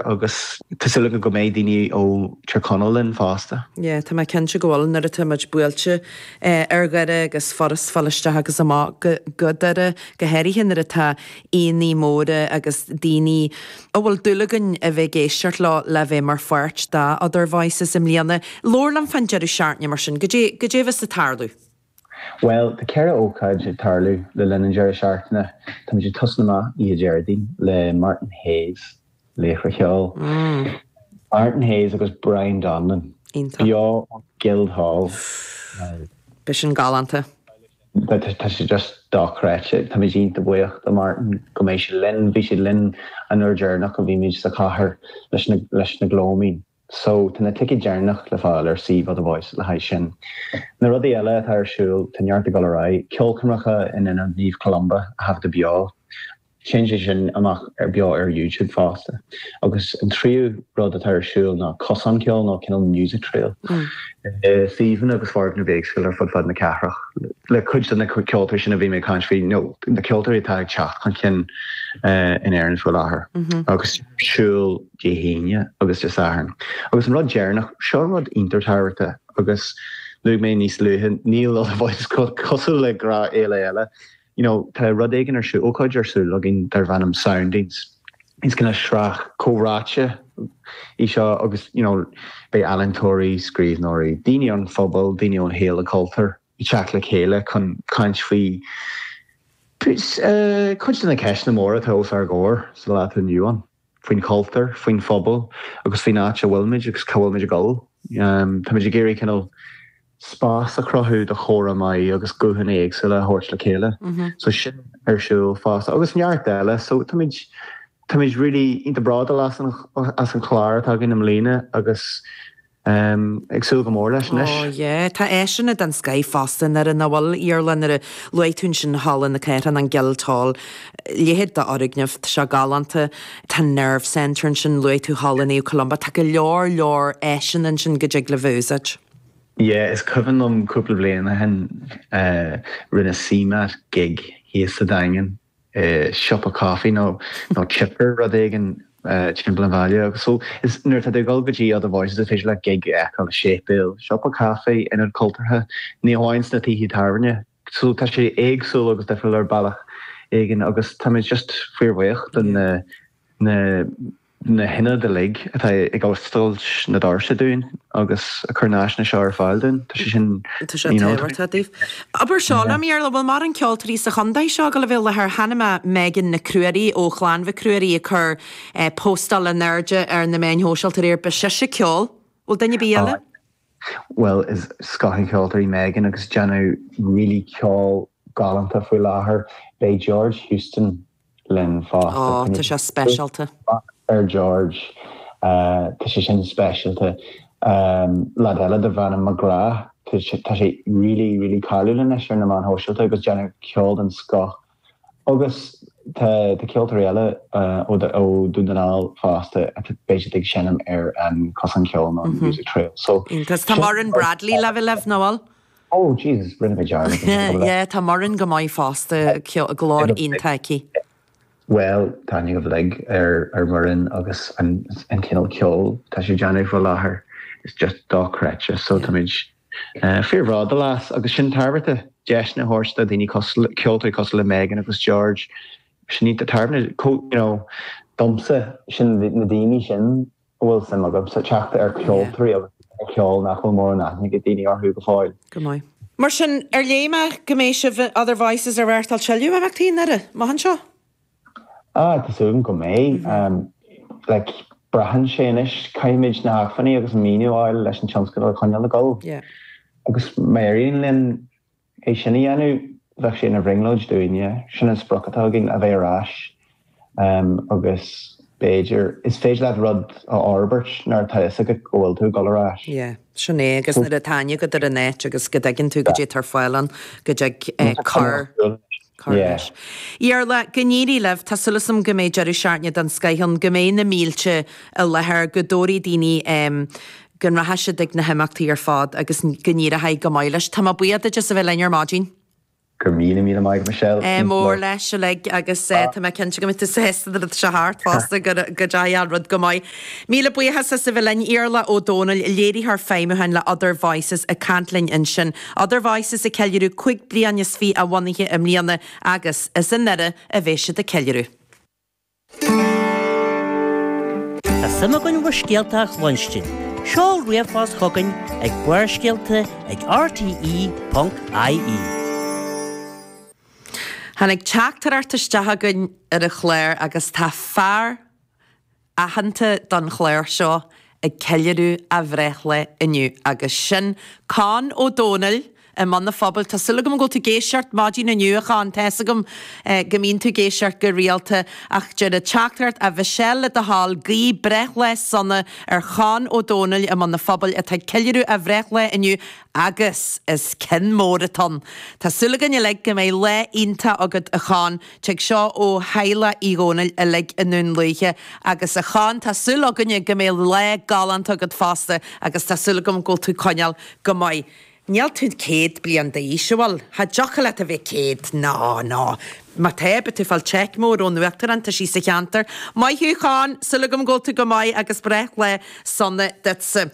agus tá súil agam go mbeidh daoine ó Tír Chonaill linn fosta. Yeah, tá mé cinnte go bhfuil, nó tá muid buailte ar Dhoire agus furast fáil isteach agus amach go Doire, go háirithe nuair atá aíonna móra agus daoine a bhfuil dúil againn a bheith ag éisteacht leo le bheith mar pháirt de Other Voices i mbliana. Labhair liom fán deireadh seachtaine mar sin, goidé a bheas ag tarlú? Bhuel, tá ceithre ócáid ag tarlú le linn an deireadh seachtaine. Táimid ag tosnú amach oíche Déardaoin le Martin Hayes, laoch an cheoil. Martin Hayes agus Brian Donlon beo ó Guildhall, an-ghalánta. Tá sé just dochreidte. Táimid iontach buíoch do Martin go mbeidh sé linn. Bhí sé linn an uair deireanach a bhí muid sa chathair leis The Gloaming. So, tá na ticéid deireanach le fáil ar suíomh Other Voices le haghaidh sin. Na rudaí eile atá ar siúl, tá neart ag dul ar aghaidh, ceolchoirmeacha in Ionad Naomh Columba a thaifeadadh beo, téann sé sin amach ar beo ar YouTube fosta, agus an tríú rud atá ar siúl ná cosán ceoil nó cineál music trail i suíomhanna agus foirgnimh éagsúla ar fud fad na cathrach le cuid de na ceoltóirí sin a bhí mé ag caint faoi, nó na ceoltóirí atá ag teacht chun cinn in Éirinn faoi láthair, agus siúl. Dé hAoine agus Dé Sathairn. Agus an rud deireanach, seo rud iontach tábhachtach agus luaigh mé níos luaithe, níl a bhaint cosúil le grá éile eile, you know, tá rud éigin ar siúl, ócáid ar siúl againn darb ainm Soundings. Is cineál sraith comhráite í seo agus, you know, beidh ealaíntóirí, scríbhneoirí, daoine ón phobal, daoine ón shaol an chultúir ag teacht le chéile chun caint faoi cuid de na ceisteanna móra atá os ár gcomhair sa lá atá inniu ann. faoin chultúr, faoin phobal agus faoin áit a bhfuilimid agus cá bhfuilimid ag dul. Táimid ag iarraidh cineál spás a chruthú do chomhrá maith agus guthanna éagsúla a thabhairt le chéile. So sin ar siúl fosta agus neart eile. So táimid, táimid really, iontach bródúil as an chlár atá againn i mbliana agus Táim ag súil go mór leis anois. Oh yeah. Tá áiseanna den scoith fosta i nDoire, nach bhfuil, Iarla? Nuair a luaigh tú ansin Halla na Cathrach, an Guildhall, leithéid d'fhoirgneamh, tá sé galánta. Tá Nerve Centre ansin, luaigh tú Halla Naomh Columba, tá go leor leor áiseanna ansin go dtig libh a úsáid. Yeah, is cuimhin liom cúpla bliain ó shin, rinne CMAT gig thíos sa Daingean. i siopa caife nó chipper rud éigin timpeall an bhaile agus so is nuair atá tú ag dul go dtí other voices is féidir leat gig a fheiceáil i séipéal siopa caife ionad cultúrtha ní hamháin sna tithe tábhairne so tá sé éagsúil agus difriúil ar bealach éigin agus táimid just fíorbhuíoch do na na na hionaid uilig atá ag oscailt na doirse dúinn agus ag cur na áiseanna seo ar fáil dúinn. Tá sé sin, tá sé tábhachtach daoibh. Abair seo liom, yeah. Iarla, bhfuil mórán ceoltoirí sa chontae seo ag gabháil a bheith i láthair? Chonaic mé Megan Nic Ruairí ó Chlann Mhic Ruairí ag cur eh postáil in airde ar na meáin shóisialta aréir, beidh sise ag ceol. Bhfuil duine ar bith eile? Aye. Bhuel is scoth an cheoltóra Megan agus déanann really ceol galánta faoi láthair. Beidh George Houston linn fós. Ó, tá sé speisialta. Maith ar George. Tá sé sin speisialta. Leaid eile darb ainm McGrath. Tá sé really, really cáiliúil anois ar na meáin shóisialta agus déanann ceol den scoth. Agus tá ceoltóirí eile ó Dhún na nGall fosta a bheidh siad ag seinm ar an Chosán Ceoil nó an Music Trail. So, iontach. Tá Muireann Bradley libh, libh, Noel? Oh Jesus, rinne mé dearmad an bhfuil le. Yeah, tá Muireann go maith fosta, glór iontach aici. Bhuel, tá aithne againn uilig ar Mhuireann agus an cineál ceoil atá sí ag déanamh faoi láthair, is just dochreidte. So táimid fíorbhródúil as agus sin ardán, deiseanna a thabhairt do dhaoine cosúil, ceoltóirí cosúil le Megan agus George, sin iad na hardáin, you know, domsa, sin na daoine sin. An bhfuil suim agatsa teacht ar cheoltóirí agus ar cheol nach bhfuil mórán aithne ag daoine orthu go fóill? Go maith. Mar sin, ar léigh mé go mbeidh sibh in Other Voices ag reáchtáil tuilleadh imeachtaí i nDoire? Amach anseo? Ah, tá súil agam go mbeidh. Like, braitheann sé anois. Caithfimid na hacmhainní agus an maoiniú a fháil leis an tionscadal a choinneáil ag dul. Yeah. Agus má éiríonn linn. É sin a dhéanamh bheadh sé ina bhrionglóid dúinne. Sin an sprioc atá againn, a bheith ar ais agus b'fhéidir, is féidir leat rud a fhorbairt nuair atá fhios agat go bhfuil tú ag dul ar ais. Yeah, sin é agus nuair a tá aithne agat ar an áit agus go dtuigeann tú goidé atá ar fáil ann go dtig cur. Cur leis? Iarla, Go n-éirí libh. Tá súil agam go mbeidh deireadh seachtaine den scoth ann, go mbeidh na mílte i láthair, go dtabharfaidh daoine em. go rachaidh siad ag na himeachtaí ar fad agus go n-éireoidh go maith leis. Tá mé buíoch duit as a bheith linn ar maidin. Go raibh míle maith agat, Michelle. Ádh mór leis uilig agus eh. tá mé cinnte go mbeidh tú sásta don rud seo thart fosta, go ndeachaidh an rud go maith. Míle buíochas as a bheith linn. Iarla Ó Dónaill, Léiritheoir Feidhmiúcháin le Other Voices ag caint linn ansin. Other Voices ag ceiliúradh cúig bliana is fiche a bhunaithe i mbliana agus is i nDoire a bheidh siad ag ceiliúradh. Tá suim againn bhur scéalta a chluinstin, seol ríomhphost chugainn ag barrscealta ag rte.ie. Tháinig teachtaireacht isteach againn ar an chlár agus tá fear. aitheanta don chlár seo ag ceiliúradh a bhreithlae inniu agus sin Conn Ó Domhnaill i mBun an Phobail. Tá súil agam go bhfuil tú ag éisteacht maidin inniu a Chonn, tá fhios agam go mbíonn tú ag éisteacht go rialta ach deir an teachtaireacht a Mhichelle le do thoil guí breithlae sona ar Chonn Ó Domhnaill i mBun an Phobail atá ag ceiliúradh a bhreithlae inniu. Agus is ceann mór atá ann. Tá súil againn uilig go mbeidh lá iontach agat a Chon. Tig seo ó theaghlach Uí Dhónaill uilig i nDún Lúiche. Agus a Chon, tá súil againne go mbeidh lá galánta agat fosta agus tá súil agam go bhfuil tú coinneáil go maith. Níl tú céad bliain d'aois, an bhfuil? Cha dtiocfadh leat a bheith céad. Ná, ná. Má tá, beidh tú fáil cheque mór ón Uachtarán, tá sí sa cheantar. Maith thú Chon, súil agam go bhfuil tú go maith agus breithlá sona duitse.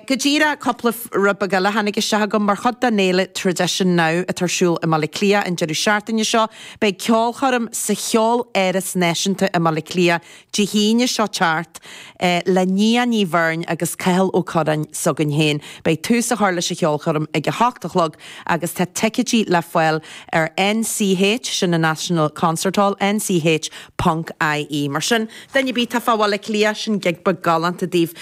Go díreach cúpla rud beag eile a tháinig isteach agam, mar chuid den fhéile Tradition Now atá ar siúl i mBaile Átha Cliath an deireadh seachtaine seo, beidh ceolchoirm sa Cheoláras Náisiúnta i mBaile Átha Cliath Dé hAoine seo ag teacht le Nia Ní Bheirn agus Cathal Ó Curráin s'againn féin. Beidh tús á chur leis an cheolchoirm ag a hocht a chlog agus tá ticeidí le fáil ar NCH, sin an National Concert Hall, nch ponc ie. Mar sin, duine ar bith atá fá Bhaile Átha Cliath, sin gig beag galánta daoibh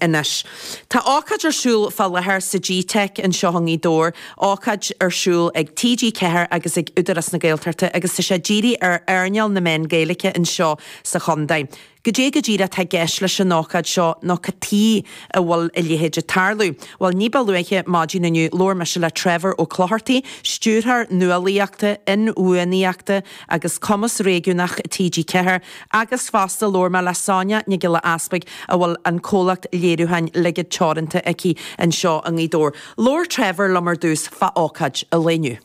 anois. Tá ócáid ar siúl fá láthair sa gteic anseo i nGaoth Dobhair ócáid ar siúl ag TG4 agus ag Údarás na Gaeltachta agus tá sé dírithe ar earnáil na meán Gaeilge anseo sa chontae. Cad é go díreach atá i gceist leis an ócáid seo nó cad chuige a bhfuil a leithéid ag tarlú? Bhuel ní ba luaithe maidin inniu labhair mise le Trevor Ó Clochartaigh, Stiúrthóir Nuálaíochta, Inbhuanaíochta agus Cumas Réigiúnach TG4 agus fosta labhair mé le Sonia Nic Giolla Easbuig a bhfuil an comhlacht léiriúcháin Ligid Teoranta aici anseo i nGaoth Dobhair. Labhair Trevor liom ar dtús fá ócáid an lae inniu.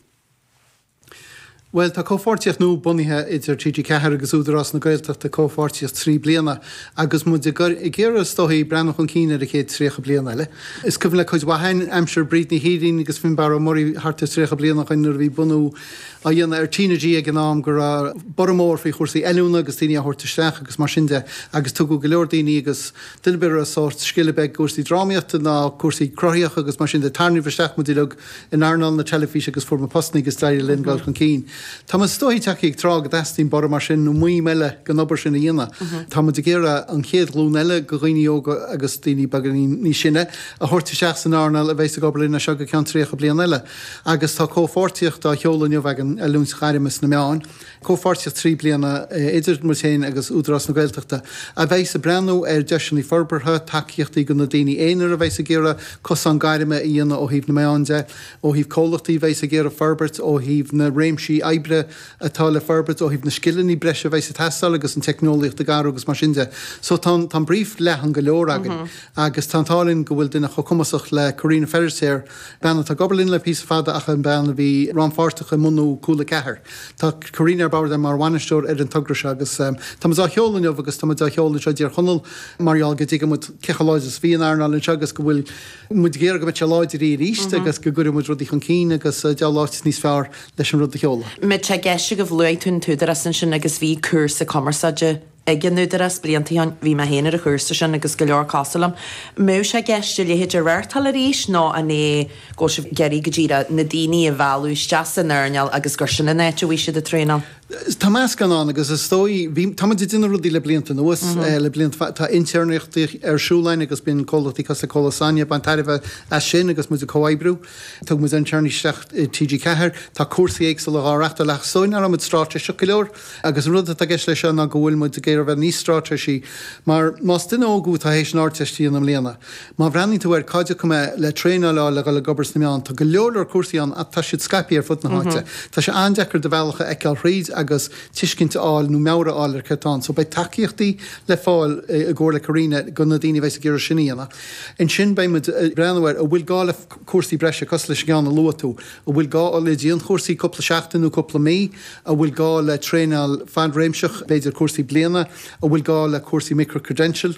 Bhuel, tá comhpháirtíocht nua bunaithe idir TG4 agus Údarás na Gaeltachta, comhpháirtíocht trí bliana, agus muid ag iarraidh, is dóichí, breathnú chun cinn ar an chéad 30 bliain eile. Is cuimhin le cuid mhaith againn aimsir Bríd Ní Shírín agus Fionnbarra Ó Muirí thart ar 30 bliain ó shin nuair a bhí bunú á dhéanamh ar T na G ag an am go raibh borradh mór faoi chúrsaí oiliúna agus daoine á thabhairt isteach agus mar sin de agus tugadh go leor daoine agus duine ar bith a raibh sórt scil ar bith i gcúrsaí drámaíochta ná cúrsaí cruthaitheach agus mar sin de tarraingíodh isteach muid uilig in earnáil na teilifíse agus fuair muid postanna agus d'éirigh linn dul chun cinn tá muid is dóichí tagtha ag tráth go dteastaíonn borradh mar sin nó maidhm eile den obair sin a dhéanamh tá muid ag iarraidh an chéad ghlúin eile de dhaoine óga agus daoine beagáinín níos sine a thabhairt isteach san earnáil a bheas ag obair linn as seo go ceann tríocha bliain eile agus tá comhpháirtíocht á sheoladh inniu againn oiliúint ghairme sna meáin. Comhpháirtíocht trí bliana idir muid féin agus Údarás na Gaeltachta a bheas ag breathnú ar dheiseanna forbartha, tacaíochtaí do na daoine aonair a bheas ag iarraidh cosán gairme a dhéanamh ó thaobh na meáin de, ó thaobh comhlachtaí a bheas ag iarraidh forbairt, ó thaobh na réimsí oibre atá le forbairt, ó thaobh na scileanna breise a bheas ag teastáil agus an teicneolaíocht ag athrú agus mar sin de. So tá an brief leathan go leor againn agus tá an t-ádh linn go bhfuil duine chomh cumasach le Carina Feirtéar, bean atá ag obair linn le píosa fada ach an bhean a bhí rannpháirteach i mbunú Cúla 4. Tá Carina ar bord mar bhainisteoir ar an togra seo agus tá muid á sheoladh inniu agus tá muid á sheoladh anseo i dTír Chonaill mar gheall go dtuigeann muid cé chomh láidir is a bhí an earnáil anseo agus go bhfuil muid ag iarraidh go mbeidh sé láidir aríst agus go gcuirfidh muid rudaí chun cinn agus cén áit níos fearr leis an rud a sheoladh. Tá mé ag ceistiú an bhfuil, luaigh tú an tÚdarás ansin agus bhí cúrsa cumarsáide ag an Údarás blianta ó shin. Bhí mé féin ar an chúrsa sin agus go leor cosúil liom. An mbeadh sé i gceist a leithéid a reáchtáil arís nó an é go bhfuil sibh ag iarraidh go díreach na daoine a mhealladh isteach san earnáil agus gurb shin an áit a bhfuil siad ag traenáil? Tá meascán ann agus is dóigh, bhí, tá muid ag déanamh rudaí le blianta anuas, le blianta fada. Tá intéirneachtaí ar siúl againn agus bíonn comhlachtaí cosúil le Comhlacht Sonia ag baint tairbhe as sin agus muid ag comhoibriú. Thug muid intéirnigh isteach i TG4. Tá cúrsaí éagsúla dhá reáchtáil ach is dóigh nach raibh muid stráitéiseach go leor. Agus an rud atá i gceist leis seo ná go bhfuil muid ag iarraidh a bheith níos stráitéisí mar más duine óg thú atá th'éis an Ardteist a dhéanamh i mbliana, má bhreathnaíonn tú air, cá dtiocfaidh mé le traenáil a fháil le dhul ag obair sna meáin? Tá go leor leor cúrsaí ann ach tá siad scaipthe ar fud na háite. Tá sé an-deacair do bhealach a fheiceáil thríd agus tuiscint a fháil nó meabhair a fháil ar céard atá ann. So beidh tacaíochtaí le fáil i gcomhairle Carina go na daoine a bheas ag iarraidh sin a dhéanamh. Ansin beidh muid ag breathnú ar an bhfuil gá le cúrsaí breise cosúil leis an gceann a luaigh tú. An bhfuil gá le dianchúrsaí cúpla seachtaine nó cúpla mí? An bhfuil gá le traenáil fadtréimhseach, b'fhéidir cúrsaí bliana? An bhfuil gá le cúrsaí micro-credential?